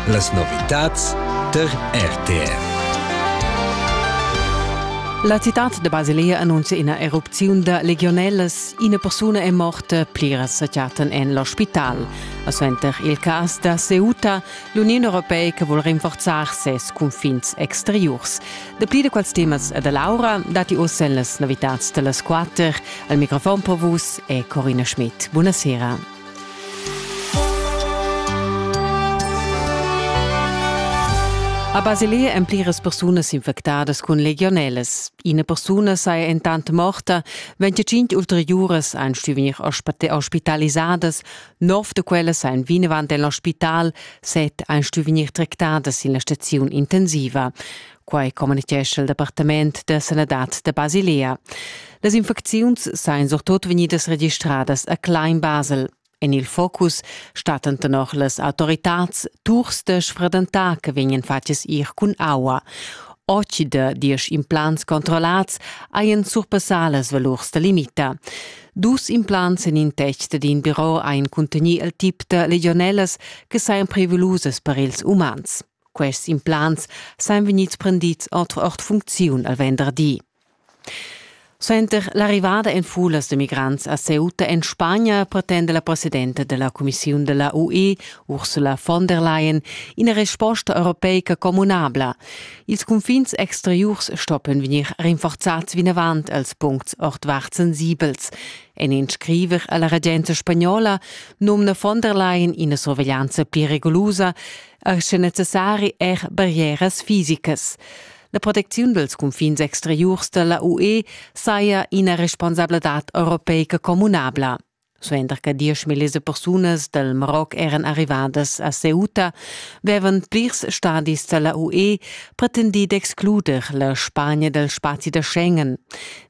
Las novitads tar RTR. La citad de Basilea annuncia ina erupziun da legionellas. Ina persuna è morta, pliras sa chattan en l'ospital. A suenter il cas da Ceuta, l'Union Europeica vuol rinforzar ses confins exteriors. Dapli de quels temas e de Laura dati ossa en las novitats de las quatter. Al microfon per vus è Corina Schmidt. Buonasera. A Basilea èn pliras persunas infectadas cun legionelas. Ina persuna saja entant morta, 25 ulteriuras ein stuvenir ospitalisadas, nov da quellas ein vinavant en l'ospital, set ein stuvenir tractadas sin la staziun intensiva. Quai communitgescha il Departament da sanadad da Basilea. Las infecziuns sajan surtut vegnidas registradas a Klein-Basel. En il focus stattan tenor las autoritads turs da sfredentà che vegnan fatgs ir cun aua. Oci da diesch implants controllats hajan surpassà las valurs da limita. Dus implants en in test d'in biro ein cuntegni il tip da legionellas che sajan prevelusas per ils umans. Quests implants sain vegnids prendids ord ord funcziun al venderdi. Suenter l'arrivada en fulas de migrants a Ceuta en Spagna pretende la presidenta della Commissiun della UE, Ursula von der Leyen, ina resposta europeica communabla. Ils confins exteriurs stoppen vegnir rinforzats vinavant als puncts ordvart sensibels. En in scriver alla regenza spagnola nomna von der Leyen ina sorveglianza pli regolosa. er sche necessari er barrieras fisicas. La protecziun dels confins exteriurs della UE saja ina responsabladad europeica communabla. Suenter che diesch millis persunas del Maroc eran arrivadas a Ceuta, vevan plirs stadis della UE pretendi d'excluder la Spagna del spazi da Schengen.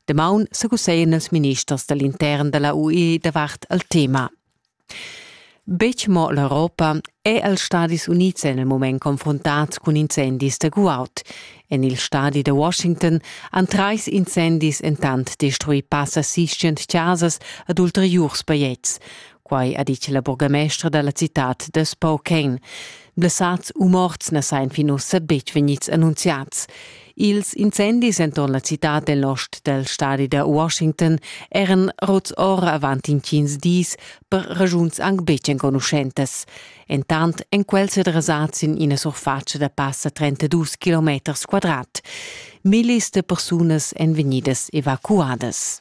Demaun secuseien els ministers dell'intern della UE davart al tema. Betg mo l'Europa è els Stadis Unids en il mument confruntads cun incendis da guaud. En il stadi da Washington han trais incendis entant destruì passa sis-cent chasas ed ulteriurs bajetgs. Quai ha ditg la burgamestra da la citad da Spokane. Blessads u morts na sajan fin ussa betg vegnids annunziads. Ils incendis enturn la citad dell ost del stadi da Washington eran rots ora avant intgins dis per regiuns anc betg enconuschentas. Entant en quel se dressats in ina surfatscha da passa 32 km quadrat. Millis de persunas èn vegnidas evacuadas.